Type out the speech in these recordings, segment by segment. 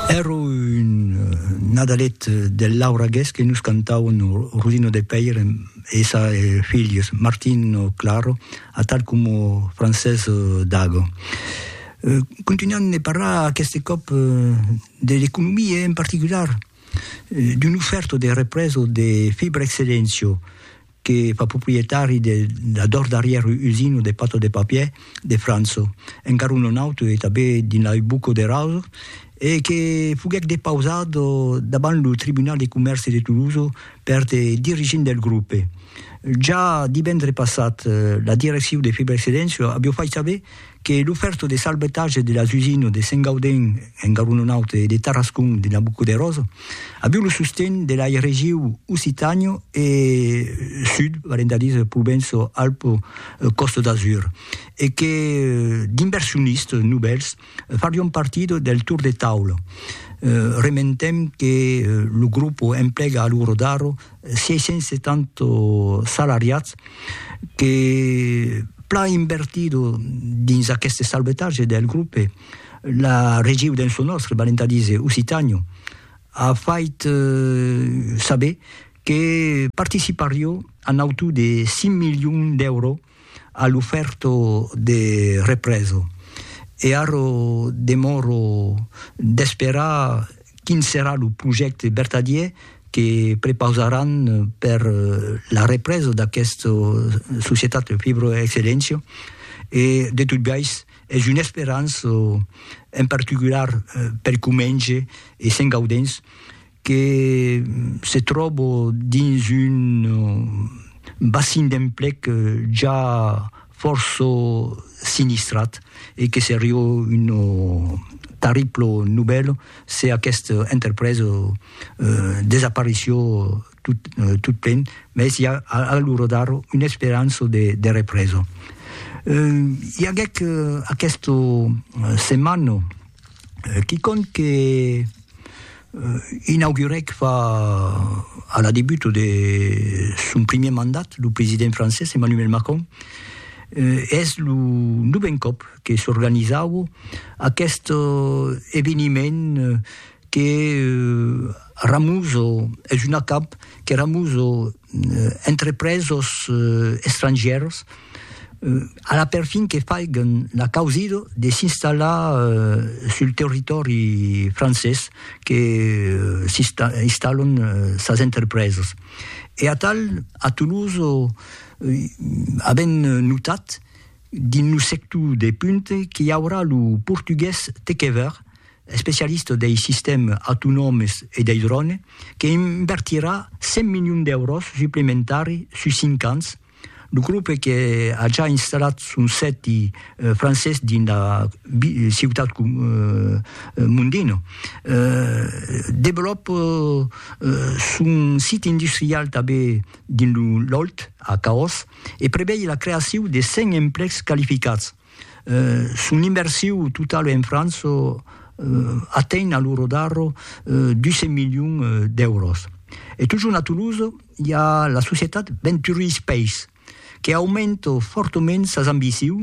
Ero un Nadalet del Lauragués que nos cantauen Rudino de Pèir e essa e filhos, Martino Claro, atal como Francés Dago. Continuam de parlar aqueste còp de l'economia e en particular d'un oferto de represa de Fibra Excellencio, que fa proprietari de la dors darrièr usina de pata de papier de França, encara un non auto e tanben dins la rue Bucco de Raso, e que foguèc depausat davant lo tribunal de comèrci de Tolosa per de dirigents del grope. Ja divendre passat, la direccion de Fibrexcedensio aviá fait saber que lo fèrto de salvetatge de las usines de Saint-Gaudens en Garonenaut e de Tarascon de Nabucoderós aviu lo sosten de lai regiu Occitània e Sud, valent a dire Provenço-Alpes-Côte d'Azur, e que d'inversionistes novèls farion partida del tour de taula. Rementem que lo grup emplega a lo rodar 670 salariats que plan invertido dins aqueste salvetatge del grope, la regiu dens lo nòstre, valent a díser Occitània, a fait saber que participarió a nautu de 5 milions d'èuro a l'ofèrto de reprèso, e arro demòro d'esperar quin serà lo projècte vertadier que prepausaràn per la reprèso d'aquesta societat Fibroexcellentia, e de tot biais es una esperança, en particular per Comenge e Sent Gaudens, que se tròbo dins un bassin d'emplec ja fòrça sinistrat e que seriá una tarribla novèla se aquesta entrepresa desapareissiá tot plen, mès i a a l'ora d'ara una esperança de represa. I aguèc aquesta setmana quicòm que Inaugurèc fa a la debut de son primièr mandat lo president francés Emmanuel Macron e es lo novèn còp que s'organizaue aqueste eveniment que ramuso, es un acab que ramuso, entrepresos estrangièrs a la perfin que faiguen la causida de s'installar sul territòri francés que s'installan sas entrepresas. E atal a Toulouse avèm notat dins lo sector de punta qu'i aurà lo portugués tec ever especialista dei sistèmes autonòmes e dei drònes, que invertirà 100 milions d'èuros suplementari sus cinc ans, lo grope que a ja installat son sèti francés dins la ciutat Mondino, develòpa son sit industrial tanben dins lo Lot, a Caós, e prevei la creacion de 100 emplecs qualificats. Son inversiu totau en França atenh a lo rodarro 200 milions d'èuros. E totjorn a Toulouse i a la societat Venturi Space que aumenta fòrtament sas ambiciu,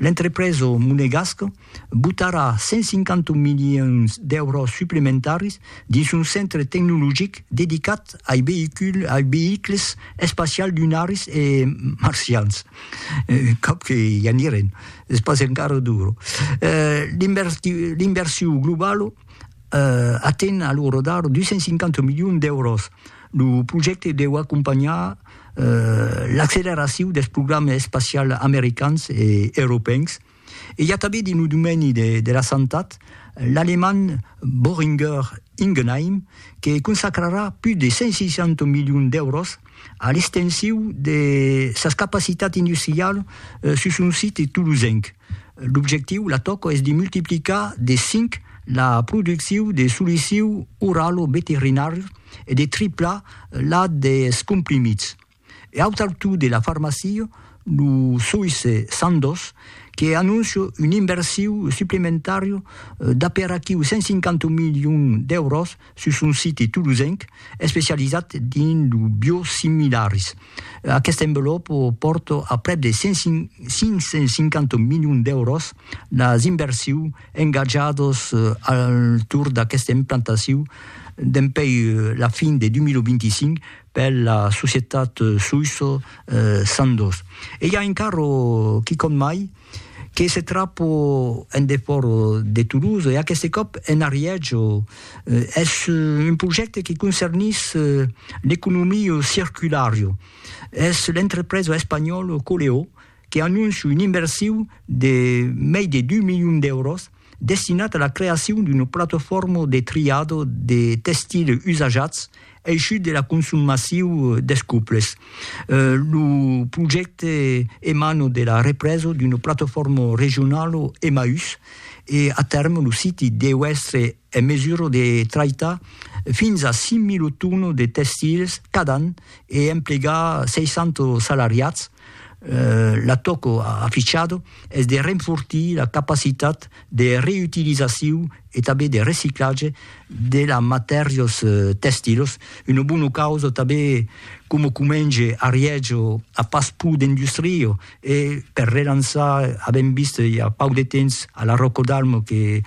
l'entrepresa monegasca botarà 150 milions d'èuros suplementaris dins son centre tecnologic dedicat ai veïculs espacials lunaris e marcians. Cap que i anirem, es pas encara duro. L'inversion globala aten a lo rodar 250 milions d'èuros. Lo projècte deu acompanhar l'acceleracion dels programas espacials americans e europèus, E i a tanben dins lo domeni de la santat l'alemand Boehringer Ingelheim que consacrarà pus de 160 milions d'èuros a l'extensiu de sas capacitats industrialas sus son site tolosenc. L'objectiu, la tòca, es de multiplicar de cinc la produccion de solicius oralo-veterinàrius e de triplar la dels comprimits. E au taltú de la farmacia, lo soïsse Sandoz que anóncia un inversiu suplementària d'aperaquiu 150 milions d'èuros sus son site tolosenc especializat dins lo biosimilaris. Aquesta envelòpa pòrta a prèp de 550 milions d'èuros las inversius engatjadas al torn d'aquesta implantaciu dempuèi la fin de 2025, per la societat Suisso Sandoz. E i a un carro, quicòm mai, que se trapo en defòra de Toulouse, e aqueste còp en Arièjo. Es un projècte que concernís l'economia circulara. Es l'entrepresa espanhòla Coleó que anóncia una inversiu de mei de dus milions d'èuros destinat a la creacion d'una platofòrma de triado de testile usajats eishut de la consum massiu des cuples. Lo projècte emana de la represa d'una platofòrma regionala Emmaüs e a tèrme lo siti deu èstre en mesura de traitar fins a 5.000 tònos de tèxtils cada an e emplegar 600 salariats, la tòca afichada es de renfortir la capacitat de reutilizacion e tanben de reciclatge de las matèrias tèxtilas, una bona causa tanben coma comenge ariètge a pas pro d'industria E per relançar, avèm vist i a pauc de temps a la Ròco d'Almo que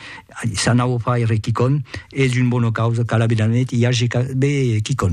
s'anau far re quicòm, es un bona causa, cal aver d'anet i ager quicòm.